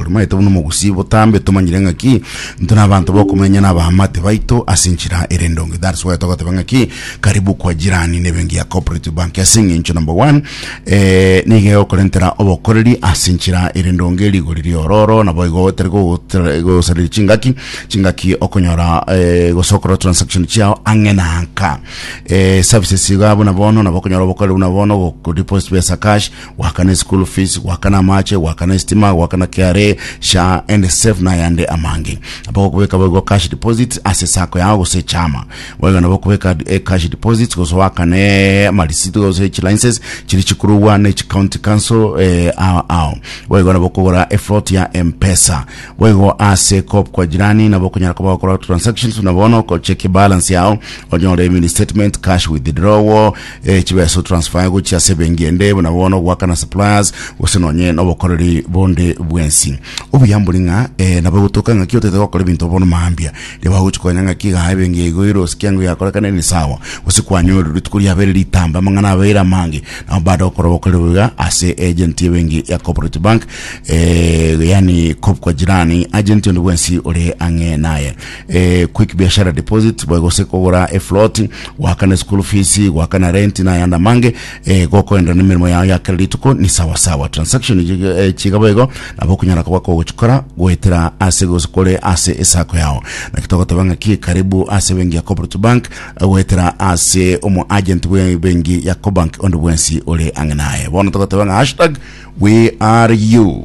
Oromanyete buna omogusii botambe, tomanyire ng'aki intwe nabaanto bokomenya nabaamate baito ase enchera ere endonge. That's why togoteba ng'aki karibu kwa jirani nebenki ya Cooperative Bank ase eng'encho number one eh, nigo egokorentera obokoreri ase enchera ere endonge, rigori ria ororo nabo igo otari gogotra- gosaria chingaki chingaki okonyora eh, gose okora transaction chiao ang'e na anka eh, services iga buna bono nabo okonyora obokoreri buna bono godeposit pesa cash goakana eschool fees goakana amache goakana esitima goakana KRA SHA and save na ayande amange aba gokobeka boigo cash deposits ase sacco yao gose echama boigo nabo okobeka eh, cash deposits gose goakane amarisiti gose echilinces chiri chikorogwa ne chicounty council eh, ao ao boigo nabo okogora eflot ya mpesa boigo ase cop kwa jirani nabo okonyara koba gokora transactions na bono okocheki balance yao onyore mini statement cash withdrawal eh, chibeso transfer gochia ase ebengi ende buna bono goakana suppliers gose nonye nobokoreri bonde bwensi obuya mbori ng'a eh, nabo gotoka ng'aki otete gokora ebinto bono maambia riaba gochi konya ng'aki iga ebengi eigo irosi kiango yakorekana ni sawa gose kwanyore rituko riabere ritambe amang'ana abeire amange nabo baada gokora obokoreri boiga ase agent ebengi ya corporate bank eh, yani kop kwa jirani agent onde bwensi ore ang'e naye eh, quick biashara deposit boe gose kogora eflot goakana school fees goakana rent na yanda mange eh, gokoenda na emeremo yao ya kera rituko ni sawa sawa transaction ji- eh, chiga boigo nabo okunyara koba kogochikora goetera ase gose kore ase esako yao naki togoteba ng'aki karibu ase bengi ya cooperative bank eh, goetera ase omo agent bwe bengi ya cobank onde bwensi ore ang'e naye bono togoteba ng'a hashtag we are you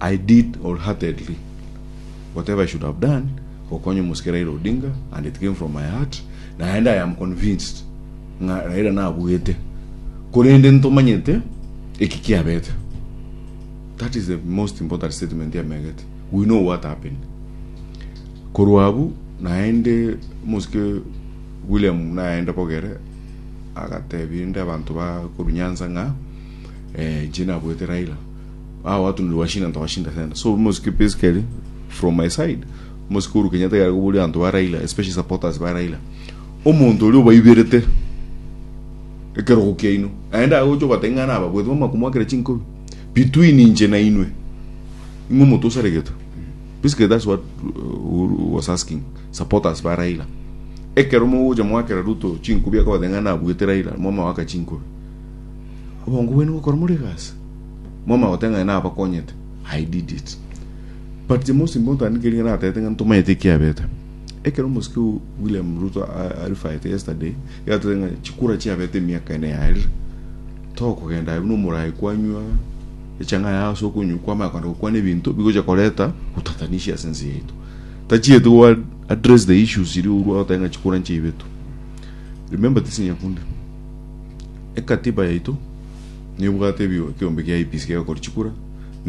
I did wholeheartedly whatever I should have done gokonya omosike Raila Odinga and it came from my heart naende I am convinced ng'a Raila nabuete korende ntomanyete eki kiabete. That is the most important statement yamegete. We know what happened. Korwa abwo naende omosike William naende bogere agatebia inde abanto ba korwa Nyanza ng'a eh, inche nabuete Raila. Ao atunire washinda ntoka shinda senda so mosike basically from my side mosike Uhuru Kenyatta gare koboria abanto ba Raila especially supporters ba Raila omonto oria obaiberete ekerogo kiaino aende agocha obatebia ng'a naba bwete bamanya komwakera chinkobi between inche na inwe ing'we omonto osaregete basically that's what uh, Uhuru was asking supporters ba Raila ekero mogocha mwakera Ruto chinkobi akabatebia ng'a nabwete Raila mwamawaka chinkobi obongo bwene gokora more egasi Mwamanya goteng'ana nabakonyete. I did it. But James Mbonto andikeriga natete ng'a ntomayete ekiabete. Ekero omosike o William Ruto a- arifaete yesterday, yatete ng'a chikura chiabete emiaka ene yarire. Tokogenda aye buna omorai kwanywa echang'aa yaye ase okonywa kwamanya kogenda gokwana ebinto bigocha koreta botatanishi ase ense yaito. Tachieti go address the issues iria orwa goteba ng'a chikura nchiaibetwe. Remember this Nyakundi. Ekatiba yaito nebwate ebigo ekeombe gia IEBC gegokorwa chikura, na ebigo.